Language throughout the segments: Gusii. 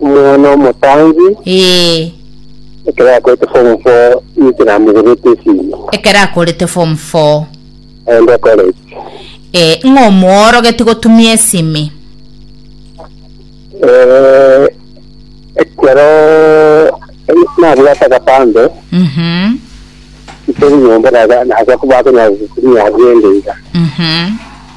omwana omotangi Ee, ekero akorete form four inche namogenete esimi ekero akorete form 4 aende college ee, ng'a omoorogeti gotumia esimi Eh, ekero nabwate agapande Mhm, ntori nyomba naga naga bakonyara gokumia agende iga mhm.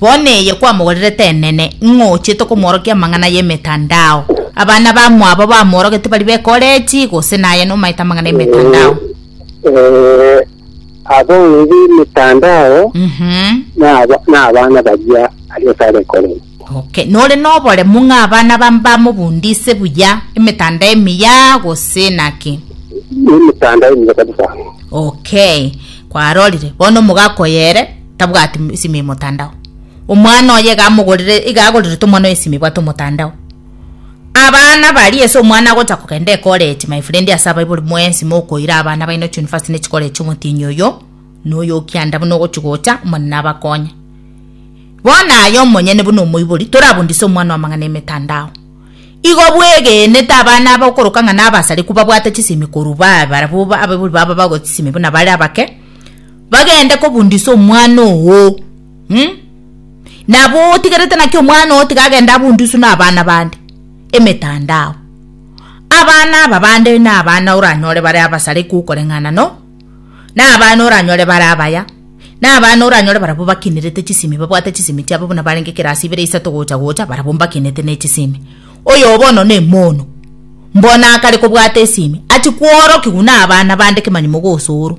Bono eye kwamogorerete enene, ng'a ochete komworokia amang'ana y'emetandao. Abana bamwabo bamworogete baria b'ekoreji, gose naye nomaete amang'ana y'emetandao? Ee, abana b'emetandao Mhm. naba- nabana baria aria ase are ekoreri. Okay, nore noboremu ng'a abana ba- bamobundise buya emetandao emiya gose naki? Nemetandao emiya kabisa. Okay, kwarorire. Bono omogaka oyo ere? tabwati m- esimi y'omotandao. Omwana oye iga amogorire, iga agorerete omwana oye esimi ebwate omotandao. Abana baria ase omwana agocha kogenda ecollege my friend ase abaibori mwensi mokoira abana baino chiuniversity na echicollege chi'omotienyi oyo, na oyo o kianda buna ogochi gocha, Omonene abakonye. Bono aye omonyene buna omoibori, torabundise omwana amang'ana emetandao. Igo bwegenete abana aba okoroka ng'a nabasarekwa babwate chisimi korwa bae barabwo ba- abaibori babo bagochi chisimi buna bare abake, Bagende kobundisa omwana oo. Hm. Nabo otigerete naki omwana oo tiga agende abundiswe na abana bande? Emetandao. Abana aba bande na abana oranyore bare abasare gokoreng'ana no na abana oranyore bare abaya na abana oranyore barabwo bakinerete chisimi babwate chisimi chiabo buna barenge kerasi ibere isato gocha gocha barabwo mbakinete ne chisimi. Oyo bono ne mono. Mbono akare kobwata esimi achi kworokigwa na abana bande kemanyi mogosooro.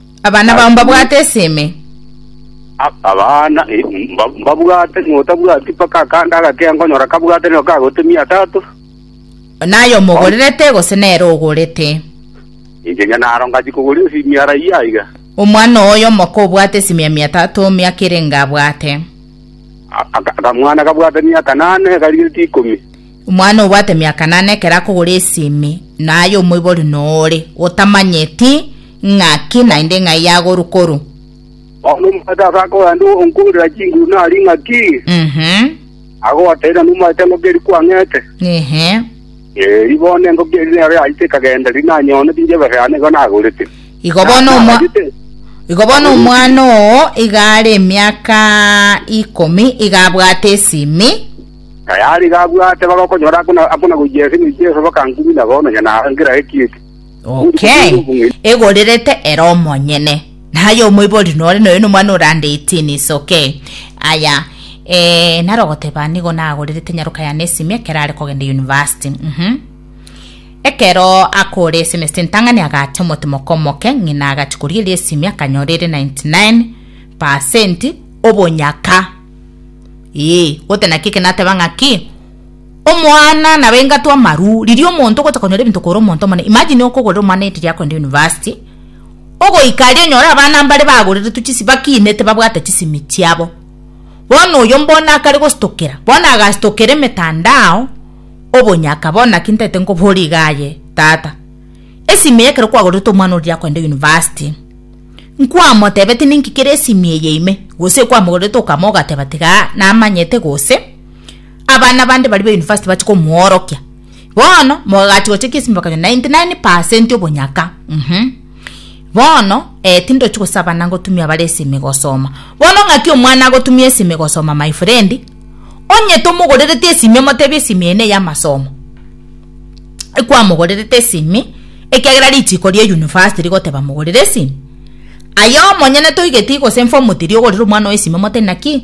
Abana bao mbabwate ase ime. A- Abana eh, mba- mbabwate, notabwati mpaka akande agake nkonyora kabwate nigo kagotemia atato. Naye omogorerete gose nere ogorete. Inche onye naro ngachi kogora esimiara eyio aiga. Omwana oyo omoko obwate esimia mia tato miaka ere enga abwate. A- aka- Akamwana kabwate miaka nane karigetie ikomi. Omwana obwate miaka nane ekero akogora esimi, naye omoibori noore, otamanyeti, Ng'aki naende ng'ai yagoru-koru? Bono omwete ase akogenda onkoorera chinguru nari ng'aki? Ehe, Agobateera, Nomoete engoko eria kwang'ete. ehe. Eeri, bono engoko eria nero yachete ekagenda, riria nanyoonetie inche ebesa yane nigo nagorete. Igo bono Na- omwa- nagachete- Igo bono Agorete. omwana oo iga are emiaka ikomi iga abwate esimi. Na yaare iga abwate, bagokonyora akona- akona gochia esemo eria Yeso, bakankumina bono, nyanaye ngera ekiete. Okay. Egorerete ere omonyene. Naye omoibori nore noyo nomwana orande 18 is okay. Aya eh naro goteba nigo nagorerete nyaroka ya nesimi ekero are kogenda university. Mhm. Ekero akore semester ntang'ani agacha omotimo okomoke ng'ina agachi korigeria esimi akanyora ere 99% obonyaka. Ee, gote naki eke nateba ng'aki Omwana naba engato amaru, riria omonto ogocha konyora ebinto kore omonto omonene. Imagine okogorera omwana egenti ria kogenda university, ogoika aria onyore abana mbare bagoreretwe chisi bakinete babwate chisimi chiabo. Bono oyo mbona akare gostokera, bono agastokera emetandao, obonyaka bono naki ntaete nkobore iga aye tata. Esimi eye ekero kwagorerete omwana oria ria kogenda university, nkwamotebete ninki kere esimi eye ime, gose kwamogorerete okama ogateba tiga namanyete gose. Abana bande baria ba university bache komoorokia. Bono mogagachi gocha kiesimi bakanywa 99 percent obonyaka. Mhm. Bono eh, tindochi gosabana ngotumia bare esimi gosoma. Bono ng'aki omwana agotumia esimi gosoma my friend, onye tomogorereti esimi omotebi esimi eye neya amasomo. Ekwamogorerete esimi ekiagera richiko ria university rigoteba mogorere esimi. Aye omonyene toigeti gose inform tiri ogorere omwana oye esimi omote naki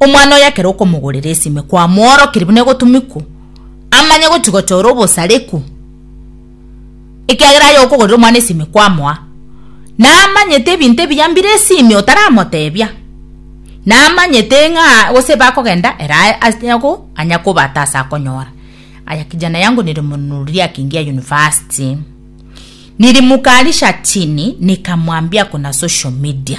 Omwana oye ekero okomogorera esime kwamworokeria buna egotumikwa, amanye gochia gochora obosarekwa, ekiagera aye okogorera omwana esime kwamoa, namanyete ebinto ebiya mbire esime otaramotebia, namanyete ng'a gose ebe akogenda ere aye ase agwo anya kobata ase akonyora. Aya kijana yangu nilimnunulia akiingia university, nilimkalisha chini nikamwambia kuna social media.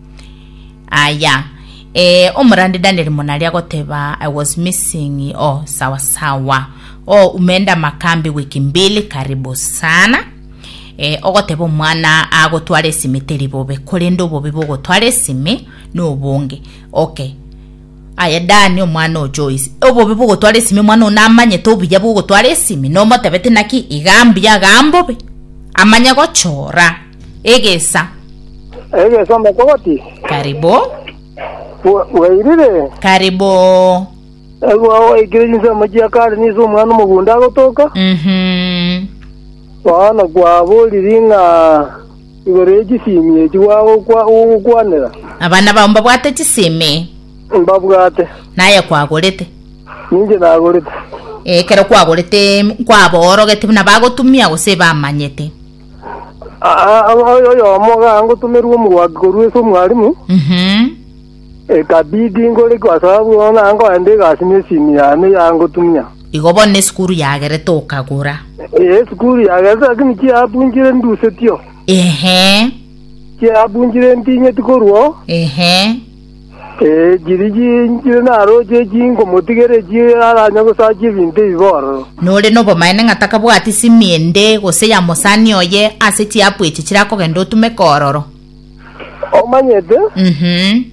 Aya. Eh, omorande Daniel monari agoteba I was missing. Oh, sawa sawa. Oh, umeenda makambi wiki mbili, karibu sana. Eh, ogoteba omwana agotwara esimi teri bobe, korende obobe bogotwara esimi nobonge. Okay. Aya Dani omwana o Joyce. Obobe bogotwara esimi omwana ona amanyete obuya bogotwara esimi nomotebete naki iga mbuya ga mbobe. Amanye gochora. Egesa. Egesa omokogoti. Karibu. Bwairire. Karibu. Egwa oikire jinse omochia kare nise omwana omogunda agotoka. Mhm. Bono kwaboriri ng'a igoro ye chisimi echi gwagokwa gogokwanera. Abana bao mbabwate chisimi. Mbabwate. Naye kwagorete. Ninche nagorete. Ekero kwagorete kwaba orogete buna bagotumia gose bamanyete. Oyomo gangotomerwa omorwaki korwa ase omwarimu, Mhm. ekabidi ngore gosoa bono naye nkoende egasi na esimi yane yangotumia. Igo bono esukuru yagerete okagora. Ee, esukuru yagerete lakini chiapunchire ndusetio. Ehe. Chiapunchire ntinyeti korwa oo. Ehe. Chiri chinchire naroche echio inkomotigera echio aranye gosachia ebinto ebi bororo. Nore nobomaene ng'a takabwati simi ende gose ya mosani oye ase chiapu echi chire akogenda otumeka ororo? Omanyete? Uhum.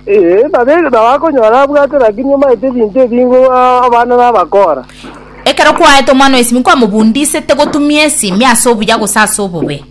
Ee, nabe nabo akonyora abwate, lakini omanyete ebinto ebi ingo abana nabakora. Ekero kwaete omwana esimi nkwamobundisete gotumia esimi ase obuya gose ase obobe?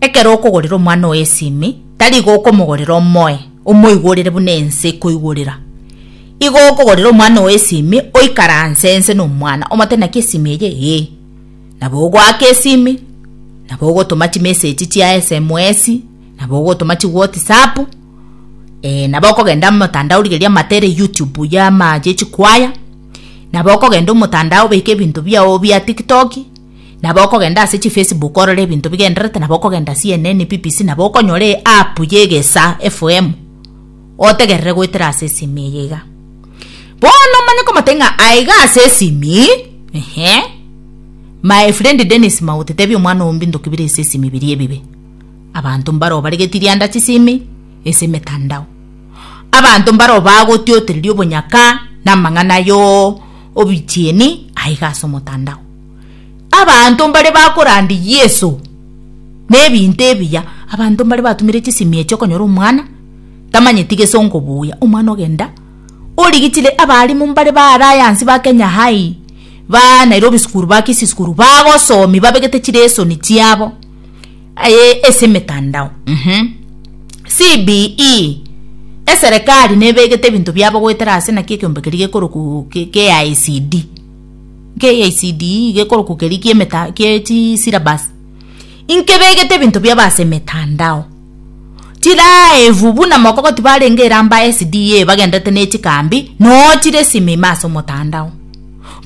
Ekero okogorera omwana oye esimi, tari igo okomogorera omoe, omoigorere buna ense ekoigorera. Igo okogorera omwana oye esimi, oikaranse ense na omwana, omote naki esimi eye, ee, nabo ogoaka esimi, nabo ogotoma chimesechi chia SMS, nabo ogotoma chiwotsapu, ee, nabo okogenda amotandao rigeria amatere YouTube ya ama ya echikwaya, nabo okogenda omotandao obeke ebinto biago bia tiktoki. Nabo okogenda ase chifacebook orore ebinto bigendererete, nabo okogenda CNN, BBC, nabo okonyora eapp y'egesa FM, otegerere goetera ase esimi eye iga. Bono omanye komotebia ng'a aiga ase esimi, ehe, my friend Dennis Mauti, tebia omwana oo mbintoki bire ase esimi biria ebibe. Abanto mbaroo baregeti rianda chisimi ase emetandao. Abanto mbaroo bagotiotereria obonyaka na amang'ana yo obichieni aiga ase omotandao. Abanto mbare bakorandia Yeso nebinto ebiya, abanto mbare batumire chisimi echi okonyora omwana tamanyeti gesongo buya, omwana ogenda origichire abalimu mbare ba Alliance ba Kenya High, ba Nairobi School, ba Kisii School bagosomia babegete chilesoni chiabo aye ase emetandao mh. CBE, eserekari nebegete ebinto biabo goetera ase naki ekeombe keria gekorokwa KICD. KICDE gekorokwa keria ki'emeta kie chi syllabus, inkebegete ebinto biabo ase emetandao, tiraebu buna mokogoti barenge eramba SDA bagendererete ne chikambi noo chire esime ime ase omotandao.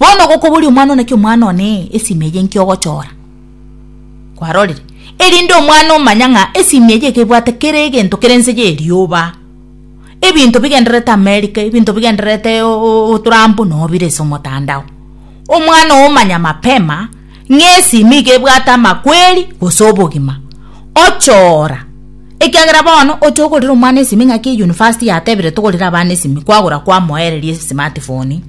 Bono gokoboria omwana oo naki omwana one esime eye inki ogochora, kwarorire, erinde omwana omanya ng'a esime eye ekebwate kera egento kera ense ye erioba. ebinto bigendererete Amerika, ebinto bigendererete oboturambu nobire ase omotandao. Omwana ogo omanya mapema ng'a esimi iga ebwate amakweri gose obogima, oche ora. Ekiagera bono oche ogorere omwana esimi ng'aki eyunifasti yatebire togorere abana esimi, kwagora kwamoereria esmart phone.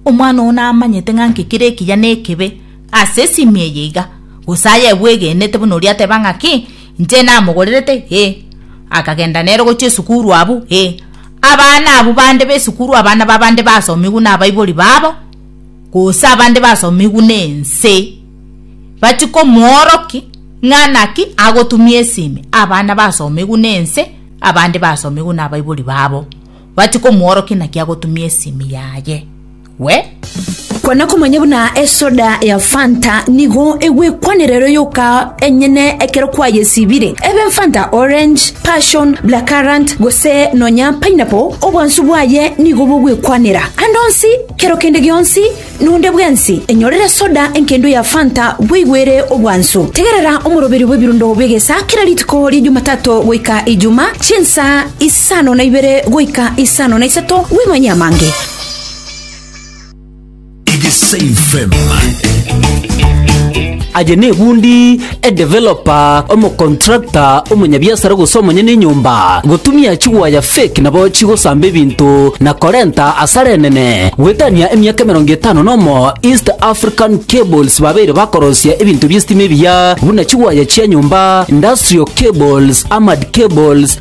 Omwana ogo namanyete ng'a nki kere ekiya na ekebe ase esimi eye iga, gose aye ebwegenete buna oria ateba ng'a ki. Inche namogorerete, ee, akagenda nere gochia esukuru abwo, ee, abana abwo bande b'esukuru, abana b'abande basomigwe nabaibori babo, gose abande basomigwe nense, bachie komworoki ng'a naki agotumia esimi, abana basomigwe nense, abande basomigwe nabaibori babo, bachie komworoki naki agotumia esimi yaye. we. Kwana komanya buna esoda ya fanta nigo egwekwanera ero yoka enyene ekero kwayesibire, ebe fanta orange, passion, blackcurrant, gose nonya pineapple, obwansu bwaye nigo bogwekwanera. Ande onsi, kero kende gionsi, nonde bwensi, enyorere soda enkendo ya fanta bweigwere obwansu. Tegerera omoroberi bw'ebirundo bw'egesa kera rituko ria Jumatato goika Ijuma, chinsa isano na ibere goika isano na isato bw'imanyia amange. Aye nebundi, edeveloper, omocontractor, omonyabiasara gose omonyene enyomba, gotumia chigwaya fake nabo chigosamba ebinto na korenta asara enene. Goetania emiaka emerongo etano nomo, East African Cables babeire bakorosia ebinto bi'estima ebiya buna chigwaya chia nyomba, industrial cables, armored cables,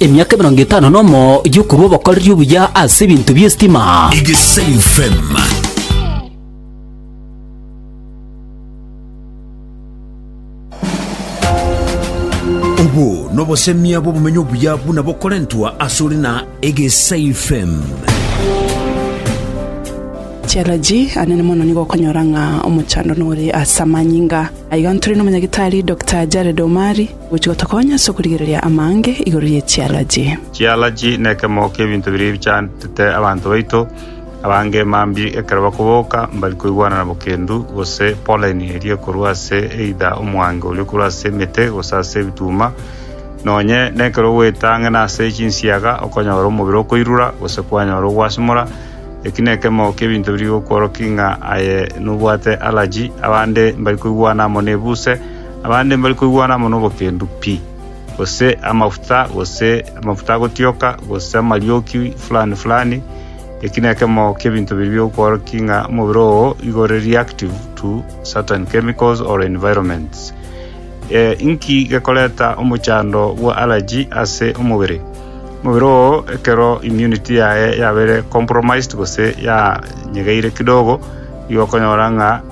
Emiaka emerongo etano nomo y'okorua obokoreria obuya ase ebinto bi'esitima. Egesayu FM. Obo nobosemia bw'obumenyi obuya buna bokorentwa asore na Egesai FM. Challenge anene mono nigo okonyora ng'a omochando nore ase amanyinga aiga ntore n'omonyagitari Dr. Jared Omari Gochi gotokonya ase okorigereria amaange igoro ye chialaji. Chialaji nekemo kiebinto biria bichantete abanto baito abange mambia ekero bakoboka mbari koigwanana bokendu gose pollen eria ekorwa ase either omwange oria okorwa ase emete gose ase ebituma nonye nekero ogoeta ang'e nase chinsiaga okonyora omobere okoirura gose kwanyora ogwasimora eki nekemo kiebinto biri gokworoki ng'a aye nobwate allergy abande mbari koigwana amo nebuse Abande mbari koigwana amo nobokendu pi, gose amafuta, gose amafuta agotioka, gose amarioki fulani fulani, eki nekemo kiebinto biria biokworokia ng'a omobere oo igo ore reactive to certain chemicals or environments. Eh, inki gekoreta omochando bwa allergy ase omobere? Omobere oo ekero immunity yaye yabeire compromised gose yanyegeire kidogo, igo okonyora ng'a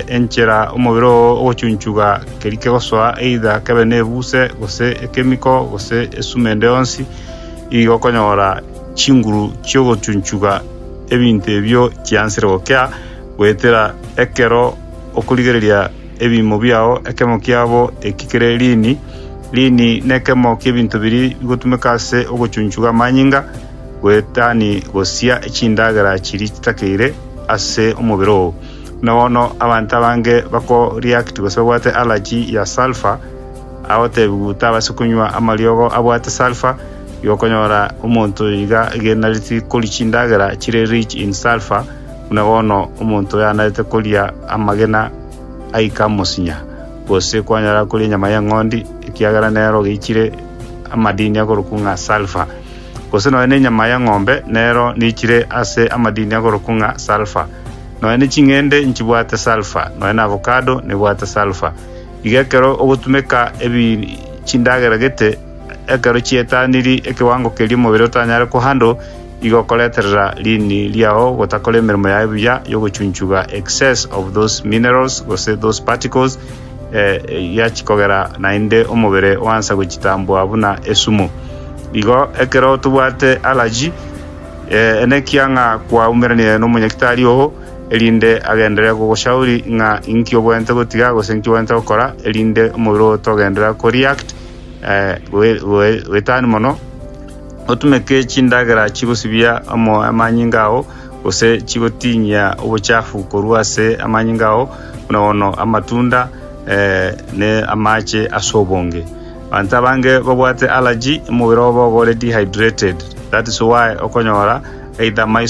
enchera omobere oo ogochunchuga keria kegosoa, either kebe nebuse, gose ekemiko, gose esuma ende yonsi, igo okonyora chinguru chi'ogochunchuga ebinto ebio chiansire gokea, goetera ekero okorigereria ebiimo biao. Ekemo kiabo eki kere lini. Lini nekemo ki'ebinto biria bigotumeka ase ogochunchuga amanyinga, goetani gosia echindagera chiria chitakeire ase omobere oo. Na bono abanto abange bakoreact gose babwate allergy ya sulphur, agotebiwa tabase konywa amariogo abwate sulphur, igo okonyora omonto oyo iga agenareti koria chindagera chire rich in sulphur buna bono omonto oyanarete koria amagena aika amosinya, gose kwanyara koria enyama y'eng'ondi ekiagera nero geichire amadini akorokwa ng'a sulphur. gose nonya nenyama y'eng'ombe, nero niichire ase amadini agorokwa ng'a sulphur. Nonya ne ching'ende nchibwate sulphur, nonya na avocado nebwate sulphur. Iga ekero ogotumeka ebi chindagera gete, ekero chietaniri ekewango keria omobere otanyare kohandle, igo okoreterera riini riao gotakora emeremo yaye buya y'ogochunchuga excess of those minerals gose those particles, egiachi kogera naende omobere oansa gochitambwa buna esumo. Igo ekero tobwate alaji, nekiya ng'a kwaumeranirie nomonyagitari oo, erinde agenderere kogoshauri ng'a inki obwenerete gotiga gose inki obwenerete gokora, erinde omobere oo togenderera koreact goetania mono, otumeke chindagera chigosibia amanyinga ao. gose chigotinyia obochafu korwa ase amanyinga ao, buna bono amatunda ne amaache ase obonge. Abanto abange babwate allergy, omobere obo oba ore dehydrated. That is why okonyora either maiso.